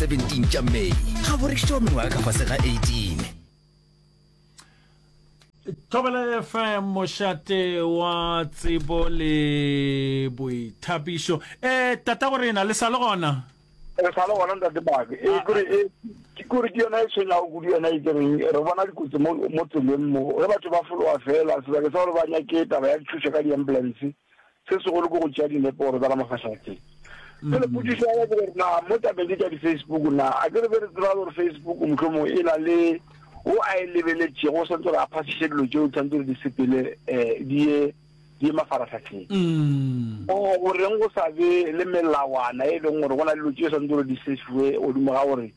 17 tša may ga bo rekišitše wa mengwaga ka fase ga 18 thobela fm mošate wa tsebo le boithapišo um tata go rena le sa le gona re sa le gona ntate bake e ah, kore ah. e, ke kore ke yona e tshwenyago kudu yona e kereng re bona dikotsi mo tseleng mo ge batho ba fologa fela sebake sa gore ba nyake taba ya dithuso ka di-ambulance Se segolo ke go tšea dinepo gore ba ka mafahlegotheng. Pele potšišo ya ke gore na mo tabeng ke tša di-Facebook na a ke re be re tsebale gore Facebook mohlomong e na le o a e lebeletšego o santse gore a phasiše dilo tšeo tshwanetse re di sepele um di ye di ye mafaratlhatlheng mm. o goreng go sa be le melawana e leng gore go na le dilo tšeo santse gore di sefiwe godimo ga gore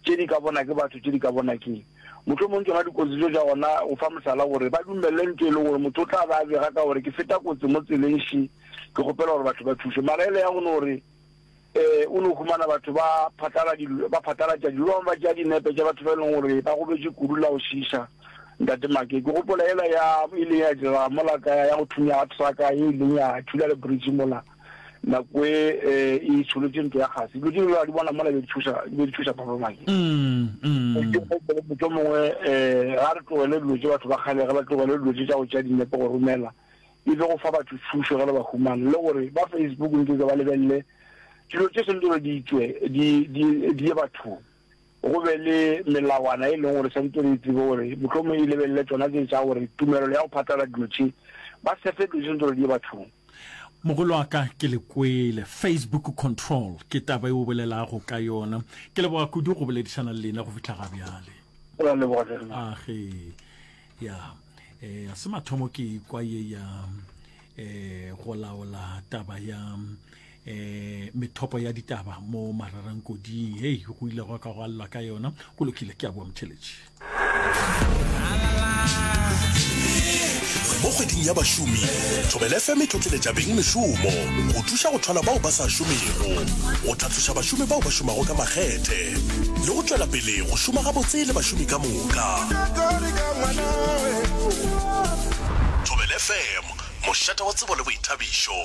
tše di ka bona ke batho, tše di ka bona ke. Mohlomong tšona dikotsi tšeo tša gona, go fa mohlala gore ba dumelele ntho e lego gore motho o tla be a bega ka gore ke feta kotsi mo tseleng še, ke kgopela gore batho ba thuše. Mara e le ya go no re um o no humana batho ba phatlala dilo, ba phatlalatša dilo, ba bangwe ba tšea dinepe tša batho ba e leng gore ba gobetše kudu la go šiiša. Ntate Make, ke gopola yela ya e ileng ya direga mola ka ya go thunya ga truck ye e ileng ya thula le bridge mola. nako e e itsholotše ntlo ya kgase dilo tše di bona mola be di thuša be di thuša papa maki motho mongwe um ga re tlogele dilo tše batho ba kgale ge ba tlogele dilo tše tša go tšea dinepe go romela e be go fa batho thušo ge le ba humana le gore ba facebook ntse tse ba lebelele dilo tše sentse gore di tswe di ye bathong go be le melawana e leng gore santse re itsebe gore mohlomong e lebelele tsona tse tsa gore tumelelo ya go phatlalela dilo tše ba sefe dilo tše santse gore di ye bathong Mogolo wa ka ke le kwele Facebook control ke taba e o bolelago ka yona ke leboga kudu go boledišana le lena go fihla ga bjale Go a leboga hle. a ge ya eh, ga se mathomo ke kwa ye ya eh, go laola taba ya eh methopo ya ditaba mo mararangkoding hei go ile go ka go allwa ka yona go lokile ke a boa motheletši mo kgweding ya bašomi thobel fm e tlotleletša beng mešomo go thuša go thola bao ba sa šomego go tlhatloša bašomi bao ba šomago ka makgethe le go tšwela pele go šoma gabotse le bašomi ka moka o tla. Thobelfm, mošate wa tsebo le boithabišo.